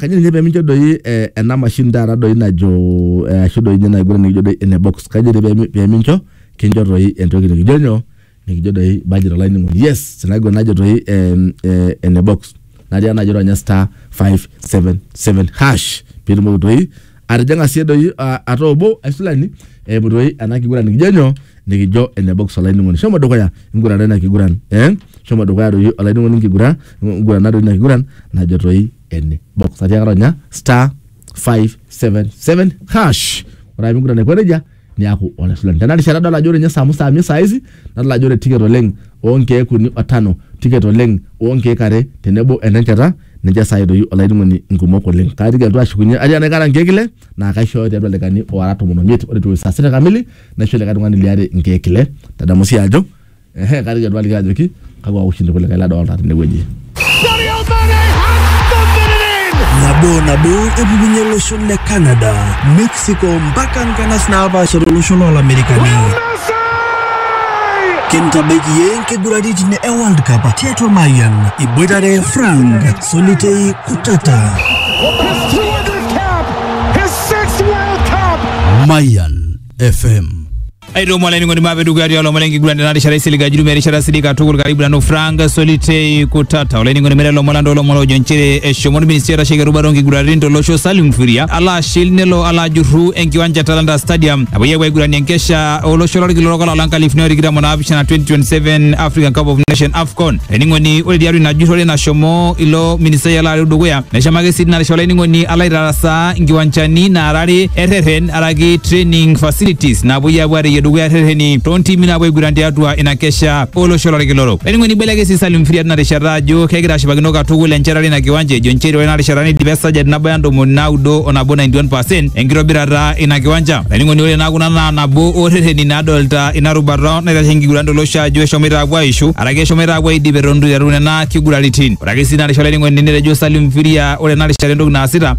kanya ninye pemincho doi eh, ena mashini taata doi najo eh, ashu doi ninye naiguran nikijo doi ene box kanya doi pemi- pemincho kincho doi entoki nikijo nyoo nikijo doi budget olainining'oni yes sinaiguran najo doi em, eh, ene box natii enajo ronya star 577 hash pitumoki doi atijing'a sii doi ah, ataa obo aisulani eimu doi ena kiguran nikijo nyoo nikijo ene box olainining'oni shomo dukuya ingurana ina kiguran eh? shomo dukuya doi olainining'oni nkigura ingurana doi ina kiguran najo toi ene box atiaka ronya star 577 hash ore ake pingurana aiko nejia niaku ole Fulani. Tenarishata adol ajo ore ninye Samu Sami saa hizi nadol ajo ore ticket oleng oonkeek uni o tano, ticket oleng oonkeek are tenebo enenchata ninche saa hii doi olainining'oni nkumok oleng. Kaatiki alotu ashukunye atii enaikata nkeek ile naa kaishooyo tiatua ildaikani oora tomon omiet. Ore etiu saa sita kamili naisho likae tung'ani liare nkeek ile. Tadamu sii ajo Ehe, kari ketua aliki ajoki kakwa ushindi kulikae ladolta tenewueji. nabo nabo epukunye losho le canada mexico mpaka nkanas naapaasha tolosho loolamerikani kintabaiki ye nkiguraritin e world cup tiatua mayian iboitare frank solitei kutata Mayan FM aitomo olainining'oni maape dukuya tialo omon enkiguran tena rishata isilig ajuru merishata sidik katukul karibu nanu frank solitei kutata olainining'oni mere lomon landa olomon ojo nchere eshomo orministri oitasheki erubata onkiguraritin tolosho salim furia alo ashil nelo alo ajurru enkiwanja e talanta stadium napuoi apuo aiguranie enkesha olosho lorkila orok olapa lonkalifuni otikitam onaapishana 2027 african cup of nation afcon olainining'oni ore tiatua ina jurrore nashomo ilo ministai alo areu dukuya neshomo ake sii tina rishata olainining'oni alo aitarasaa nkiwanjani naarare erreren araki training facilities napuoi apuo areyie dukuya rrereni toontimi napuo aiguran tiatua ina kesha olosho lorkilorok olainining'oni ibeleke sii Salim Fria tina rishata ajo kegira ashipakino katukul enchetare ina kiwanja ejo nchere ore ina rishata neidipa esajati nabaya ntomoni naudo o nabo 91% enkitobirata ina kiwanja olainining'oni ore naa kuna naa nabo oorrereni naadolta ina rubata naitashe enkiguran tolosho ajo eshomoita apuo aishu araki eshomoita apuo aidip eton itu iteru nena kiguraritin ore ake sii ina rishata olainining'oni netejo Salim Firia ore ena rishata entoki naasita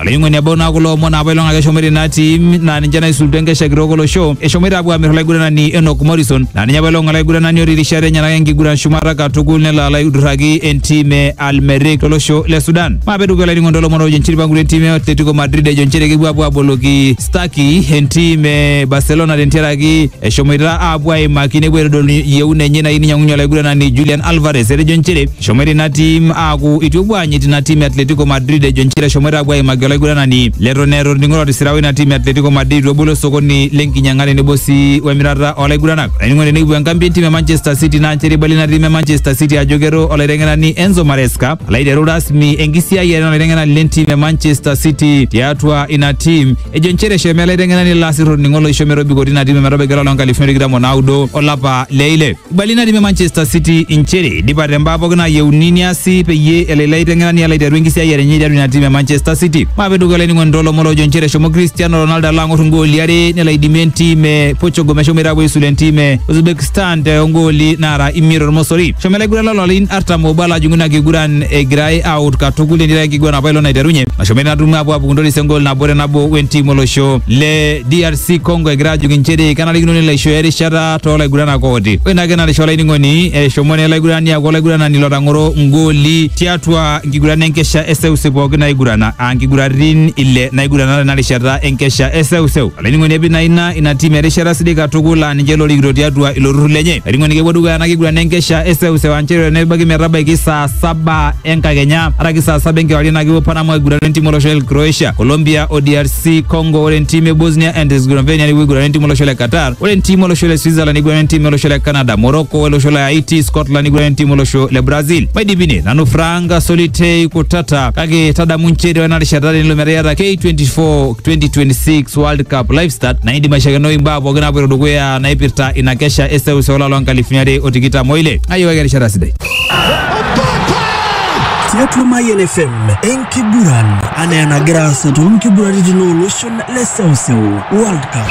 Olaing'oni ebau naa kulo omon apa ilong ake eshomoita ina tim naa ninche naisulutua enkesha kitok olosho eshomoita apuo aamir olaiguranani Enock Morrison naa ninye apa ilong olaiguranani otii rishat enyenak enkiguran shumata katukul nelo alo aidurraki entim e Al Merrikh tolosho le Sudan. Maape etukuya olainining'oni toolomon oojo nchere eipangutua entim e Atletico Madrid ejo nchere kepuo apuo aboloki Stuckey entim e Barcelona tentiaraki eshomoita apuo aimaki nepuo aitodolu yieuna enye nayieu ninyang'unye olaiguranani Julian Alvarez etejo nchere Eshomoita ina tim aaku itu epuo aanyit ina tim e Atletico Madrid ejo nchere eshomoita apuo aimaki olaiguranani leton eeta orning'o lotisira oina tim e Atletico Madrid itu ebolo osokoni lenkinyang'a tenebo sii wemirata olaiguranak. Olainining'oni tenekipuo enkambi entim e Manchester City naa nchere eibalie ina tim e Manchester City ajo keto olaiteng'enani Enzo Maresca alo aiteru rasmi enkisiayiare enaa olaiteng'enani lentim e Manchester City tiatua ina tim ejo nchere eshomo ele aiteng'enani ilo asir orning'o loisho metobiko tina tim ometabaiki olapa loonkalifuni are o tikitam o naudo olapa le ile. Ibali natii Manchester City inchere idipate mbaa pookin naayieuni niasi peyie elo ilo aiteng'enani alo aiteru enkisiayiare enye tiatua ina tim e Manchester City. Maape dukuya olainining'oni toolomon loojo inchere eshomo Cristiano Ronaldo alo ang'or ingooli are nelo aidimie entim e Portugal meshomoita aapuo aisulu entim e Uzbekistan too ngooli naara imiet tormosori. Eshomo ele aiguranani loolarin artam oobo alo ajing'u ina kiguran egirai aaut katukul etii enkiguran apailong naiterunye nashomo ina tumo aapuo aapuku ntoris engool nabo te nabo wentim olosho le DRC. si Congo egira ajuk inchere kenarikino nelo aishooyo erishata too laiguranak ooti. Ore ina ake narisha olainining'oni eshomo naa olaigurani aaku olaiguranani lotang'oro ngooli tiatua nkiguran enkesha eseuseu pooki naigurana aa nkiguratin ile naigurana tena rishata enkesha eseuseu. Olainining'oni epik naa ina ina tim erishata sidai katukul aa ninche lorikito tiatua ilo turrur lenye. Olainining'oni kepuo dukuya ena kiguran enkesha eseuseu aa nchere tenebaiki metabaiki saa saba enkakenya araki saa saba enkewarie naa kepuo Panama aigurana entimu olosho le Croatia, Colombia o DRC Congo. Ore entimu e Bosnia and Herzegovina nepuo aigurana entimu olosho le Qatar. Ore entimu olosho le Switzerland neigurana entimu olosho le Canada, Morocco olosho le Haiti, Scotland neigurana entimu olosho le Brazil. Maidipine nanu Frank Solitei Kutata kake tadamu nchere ore ena rishata tenelo metaa iata K24 2026 World Cup live start naa indim aishakenoi imbaa pooki naapoito dukuya naipirta ina kesha eseuseu olapa loo nkalifuni are o tikitam oile. Ng'ayiok ake erishata sidai. tiatua Mayian FM enkiguran anaa enagira aasa too nkiguraritin ooloshon le seuseu World Cup.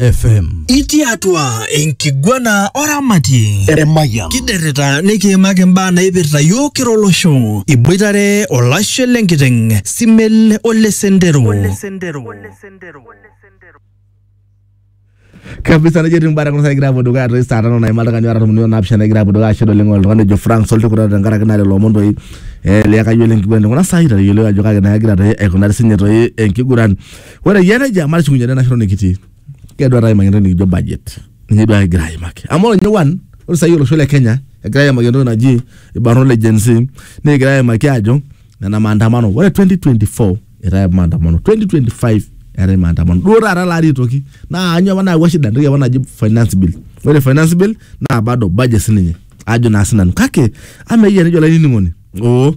FM. Itii atua enkiguana oramatie Emayian. kiderrita nikiimaki imbaa naipirta yiok kira olosho iboitare olashe lenkiteng simel ole sendero kabisa nejo etiu mbara kuna saa egira apuo dukuya toi saa tano naima oltung'ani oota tomoni onaapishana egira apuo dukuya ashe oleng oltung'ani ojo Frank Soltikuta tenkaraki naa lelo omon toi eh, liakayiolo enkiguran tekuna saai itayiolo ajo kake naa egira toi aikunari sinye toi enkiguran Ore eyia nejia matushukunye te national nikitii. Keedo taata aimaki entoki nikijo budget. Ninye duo kigira aimaki. Amu ore ninye one, ore saai olosho le Kenya egira aimaki entoki naji irbarnot le Gen Z nekigira aimaki aajo nena maandamano. Ore 2024 eetae apa maandamano, 2025 eetae maandamano. Duo taata ele ari aitoki. Naa kanyoo apa nayawua shida? Entoki apa naji finance bill. Ore finance bill naa bado budget siininye ajo naa sinanu. Kake amaa eyia nejo olainining'oni oo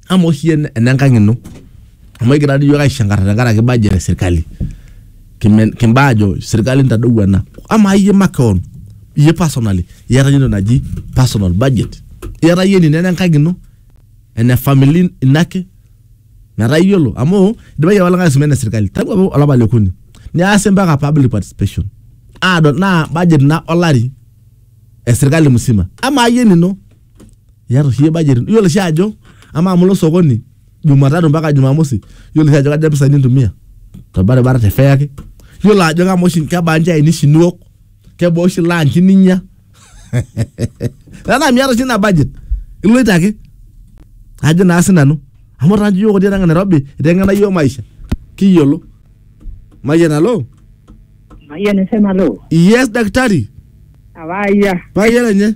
amaa oshi iyie enenkang ino amu ekigira dii iyiook aishankarr tenkaraki budget e sirkali kimen kimbaa aajo sirkali intadou ena amaa iyie makewon iyie personally iyata iyie entoki naji personal budget iyata iyie enino enenkang ino ene family ino ake metaa iyiolo amu idipaki apa olikae aisuma ene sirkali tangu apa olapa liokuni neasi mpaka public participation adol naa budget ina olari esirkali musima amaa iyie enino. iata oshi iyie budget ino iyiolo oshi ajo amaa amu ilo sokoni jumatatu mpaka jumamosi iyiolo oshi ajo kaja mpisai nintumia torbaribara te fare ake iyiolo ajo kamaa oshi kebaa nchaaini oshi niwok kebaa oshi lunch ninya tenaa miata oshi ina budget iloito ake ajo naa sinanu amu taa nchi iyiok otii atua Nairobi iteng'ena iyiok maisha kiyiolo mayian alo Mayian FM alo. yes daktari Abaya. mayian enye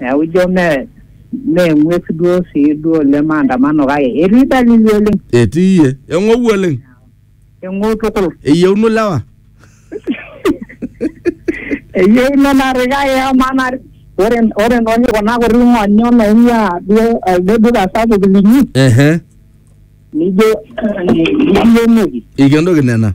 Neaku ijo mee mee eng'ues duo sii duo oleng maandamano kake etii dalili oleng. Etii iye. Eng'ou oleng. Eng'ou tukul. Eyieuno lewa. Eyieuno narri kake amaa naa ore ore nooshi kuna kuti ng'onyo naing'uaa duo elde duka sapuk linyi Ehe. nijo eh, nikienoki. Eikendoki nena.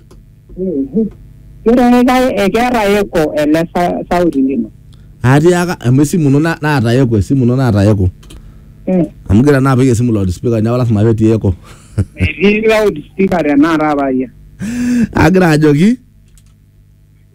Ketonita keeta eko ele sa- sauti lino. Atiaka amu esimu ino na- naata eko, esimu ino naata eko. Eh, Amu gira naa apik esimu loudspeaker neeku lasima petii eko. Etii loudspeaker tenakata paayia. Agira ajoki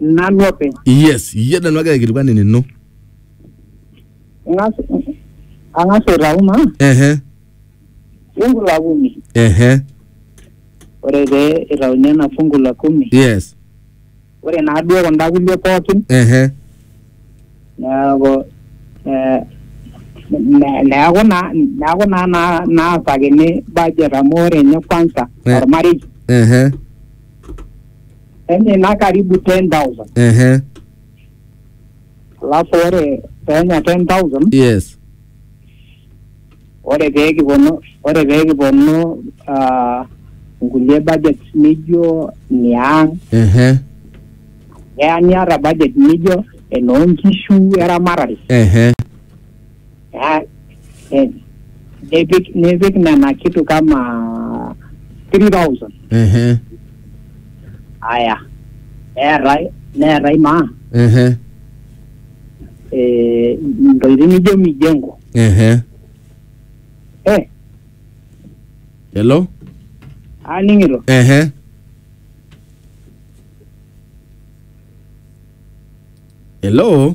nanu openy yes iyie nanu agira aikilikuan enino ang'as ang'as aitau maa ehe fungu la kumi ehe ore pee itauni ena fungu la kumi yes ore naa duo kunda kulie pookin ehe neeku eh, ne- neeku naa neeku naa naa- naasakini budget amu ore ninye kwanza Eh. ormarei ehe enye ina karibu 10000 ehe alafu ore penya 10000 yes ore pee kiponu ore pee kiponu ah, nkulie budget nijo niang ehe keya niata budget nijo enoonkishu eramatare ehe Ah, eh, nipik nipik nena kitu kama 3000 ehe aya neetai neetai maa ehe eh, ntokitin nijo mijengo ehe eh, hello aning'ito ehe hello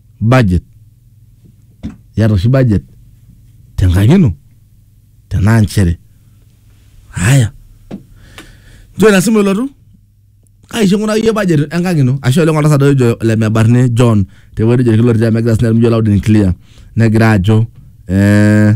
budget iyata oshi budget tenkang ino tenaa nchere haya nchoo ina simu elotu kaisho ing'uraki iyie budget enkang ino ashe oleng oltasat ojo lemebarni John tewueji nejo irkiloriti amu egira sinye ajo loud and clear negira ajo eh,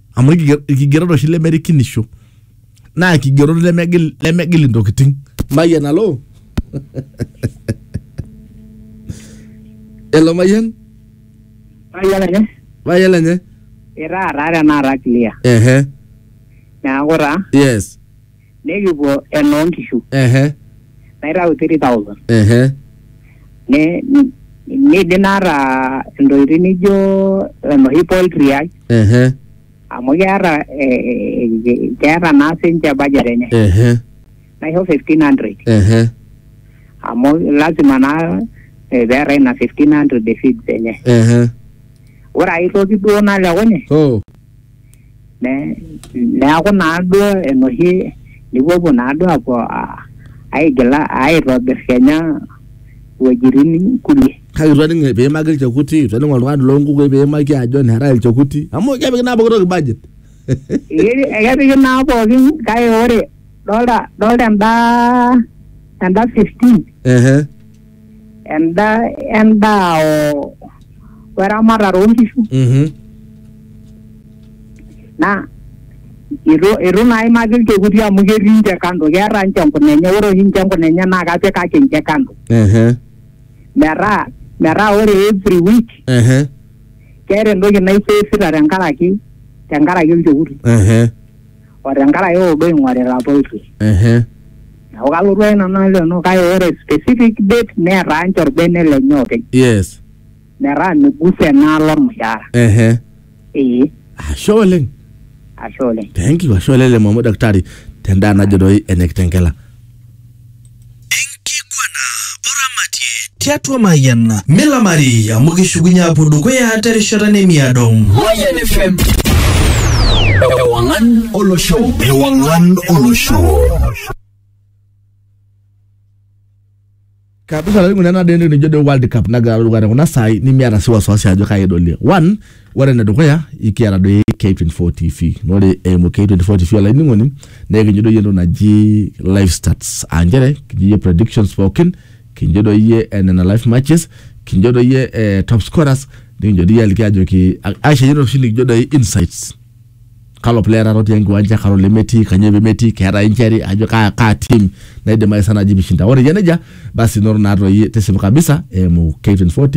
amu ilkiger- ilkigerot oshi lemerikinisho naa ilkigerot lemegil lemegil intokitin mayian alo elo mayian Mayiolo nye, mayian lenye itaa taa tenakata clear. ehe Neaku taa yes Nikipuo enoo nkishu ehe naitau 3000 ehe ne ni- nidim naata ntokitin nijo enoshi poultry ai ehe amu keeta eh, eh, eh, keeta naa sinche budget enye ehe naisho 1500 ehe amu lazima naa eh, peeta ina 1500 e feeds enye ehe ore ai toki duo nalekunye oh Ne- neaku naaduo enoshi nipuopuo naaduo apuo a- aigila aitobir kenya wuejitin kulie kake itu aning piimaki ilchekuti itu aning oltung'ani loonkukui piimaki ajo neetae ilchekuti amu kepiki naa pooki toki budget Ee, ekepiki naa pookin kake ore dolta dolta enda enda 15 ehe endaa endaa o weramatare oonkishu Mhm. naa itu itu naa imaki ilchekuti amu ketii ninche kando keeta ninche enkuna enye ore oshi ninche enkuna enye naa kapikaki ninche kando Ehe. metaa metaa ore every week Ehe. keeta entoki naisavita tenkaraki tenkaraki olchekuti Ehe. o tenkaraki kuldo oing'orita poultry Ehe. neeku kalotu ake nanu naleno kake ore specific date netaa ninche orbene lenye openy yes metaa migusa enaalo ormushaara ehe ee ashe oleng ashe oleng thank you ashe oleng lemo amu daktari tendaa najo doi ene kitengela tiatua Mayian milamari amu kishukunye apuo dukuya terishata nemiado. Mayian FM. Ewangan olosho. Ewangan olosho. kabisa laing'urana deni nijo de world cup nagira alotu dukuya te kuna saai nimiata si wasiwasi ajo kai edolie one ore enedukuya ikiata doi K24 TV na ore eimu K24 TV olainining'oni na ekincho doi entoki naji live stats aa nchere kincho iyie predictions pookin kincho doi iyie eh, nena live matches kincho doi iyie eh, top scorers nikincho doi iyie aliki ajoki aisho iyie oshi likijo doi insights kalo player taata otii enkiwanja kalo lemetii kanyoo pemetii keetae injury ajo kaa, kaa team naidim aisa naji pishinda ore eyia nejia basi inoto naa toi tisipu kabisa eimu K24 TV